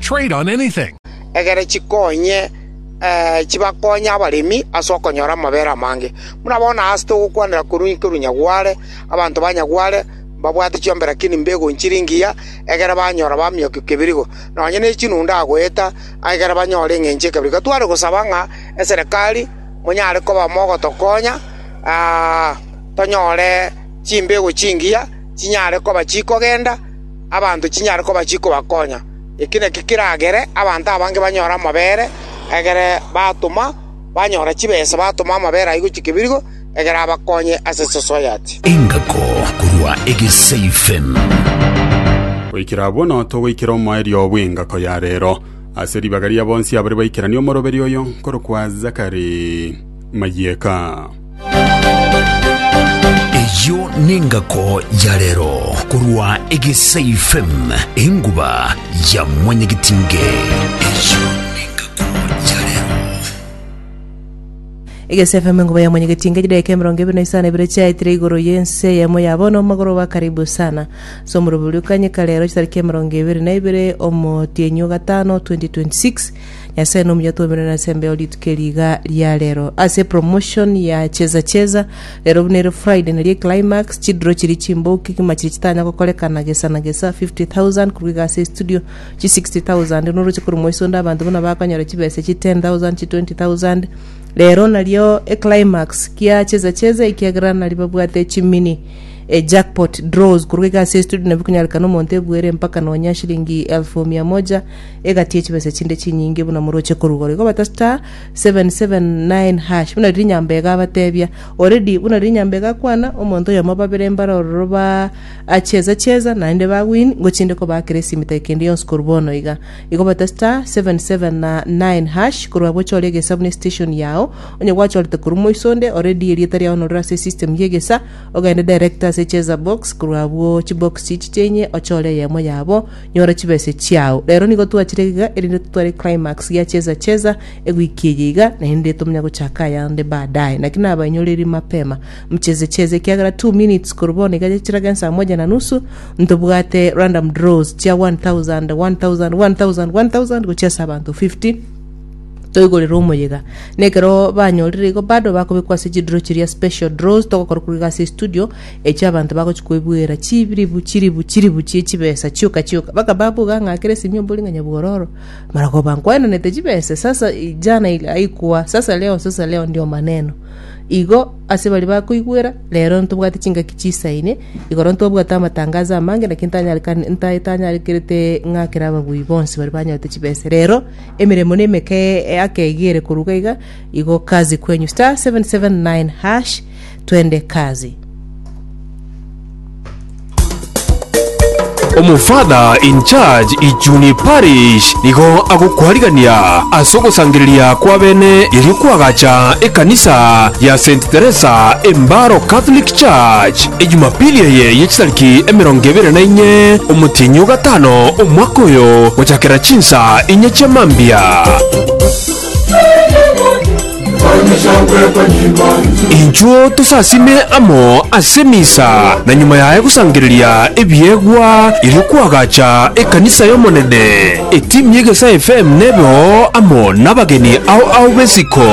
Trade on anything. egere chikonye eh, chibakonye abaremi ase okonyora amabera amange. Buna bono aase togokwanera korwa inki korwa Nyagware, abanto ba Nyagware mbabwate chiombe lakini mbegonchire engiya egere banyora bamiokio kebirigo, nonye ne chinundu agoeta egere banyore eng'encho ekebirigo. Gatware gosaba ng'a eserekari monyare koba mogotokonya ah, tonyore chimbego chingiya chinyare koba chikogenda abanto chinyare koba chikobakonya. Eki nakio keragere abanto abange banyore amabere, egere batoma banyora chibesa batoma amabere ayio gochia kebirigo, egere abakonye ase society. Engako korwa egesaifem. Goikera abwo no togoikera omoerio bw'engako ya reero. Ase ribaga ria bonsi abare baikeranie omoroberio oyo nkorokwa Zachary Mayieka. Eyio nengako ya rero korwa egesaifm enguba ya mwanyagitinge. Eyio nengako ya rero. egesefm enguba ya mwanyagetinga chidaeka emerongo ebere na isano ebere chiaetire igoro yense eyemo ya bono omogoroba karibu sana ase omorobori o kanyeka rero chitariki emerongo ebere na ibere omotienyi o gatano 2026 Nyasae nomuya twomire na ase embeo rituko eri iga ria rero ase promotion ya cheza cheza rero buna ere Friday naria climax chidro chiri chimboki kima chiri chitanya gokorekana gesa na gesa 50000 korwa iga ase studio chi 60000 noroche korwa mwaisonde abanto buna bakonyora chibesa chi 10000 chi 20000 rero nario e climax kia cheza cheza ekiagera nari babwate chimini e jackpot draws korwa iga ase studio nabwo konyarekana omonto ebuere mpaka nonya shilingi elfu mia moja egati ye chibesa chinde chinyinge buna moroche korugoro. Igo bata star seven seven nine hash buna riria nyambega abatebia already buna riria nyambega akwana omonto oyomo babere mbare ororo ba acheza cheza naende ba win ngochi inde kobakera esimi take kende yonsi korwa bono iga. Igo bata star seven seven na nine hash korwa abwo chore egesa buna estation yao onye gwachorete korwa moiso onde already erieta riao norire ase esystem ye egesa ogende direct ase cheza box korwa abwo chibox chichiche inye ochore eyemo yabo Nyora chibese chiao. Rero nigo twachire iga erinde totware climax ya cheza cheza ewiki eye iga naende tomonya gochaka ayande baadaye. Naki nabainyoreiri mapema mcheze cheze ekiagera two minutes korwa bono iga chiraga ensaa moja na nusu ntobwate random draws chia one thousand, one thousand, one thousand, one thousand gochia ase abanto fifty toigorere omoyega. Na ekero banyorire igo bado bakobekwa ase chidraw chiria special draws togokora korwa iga ase estudio Echio abanto bagochia koebuera chiribu chiribu chiribu chie chibesa chioka chioka, bakaba abwo gang'akire Simio mbori ng'a nyabwororo, maroko bankwaenanete chibesa, sasa i- jana i- aikwa, sasa leo, sasa leo ndio maneno. Igo ase baria bakoigwera, rero ntobwate chingaki chisaine, igoro ntobwate amatangazo amange, naki ntanyarekani- nta- tanyarekerete ng'akere ababui bonsi baria banyorete chibesa. Rero emeremo nemeke e- akeegere korwa iga, igo kazi kwenyu. Star 779 hash. Twende kazi. Omofather in charge Ijuni Parish nigo agokwarigania ase ogosangereria kw'abene erio kwagacha ekanisa ya Saint Theresa Embaro Catholic Church ejumapili eye ye chitariki emerongo ebere na inye omotienyi o gatano omwaka oyo gochakera chinsa inye chia mambia. Inchuo tosasime amo ase misa, na nyuma yaye gosangereria ebiegwa erio kwagacha ekanisa y'Omonene. Etimu y'Egesae FM nebe oo amo nabageni ao ao b'esiko.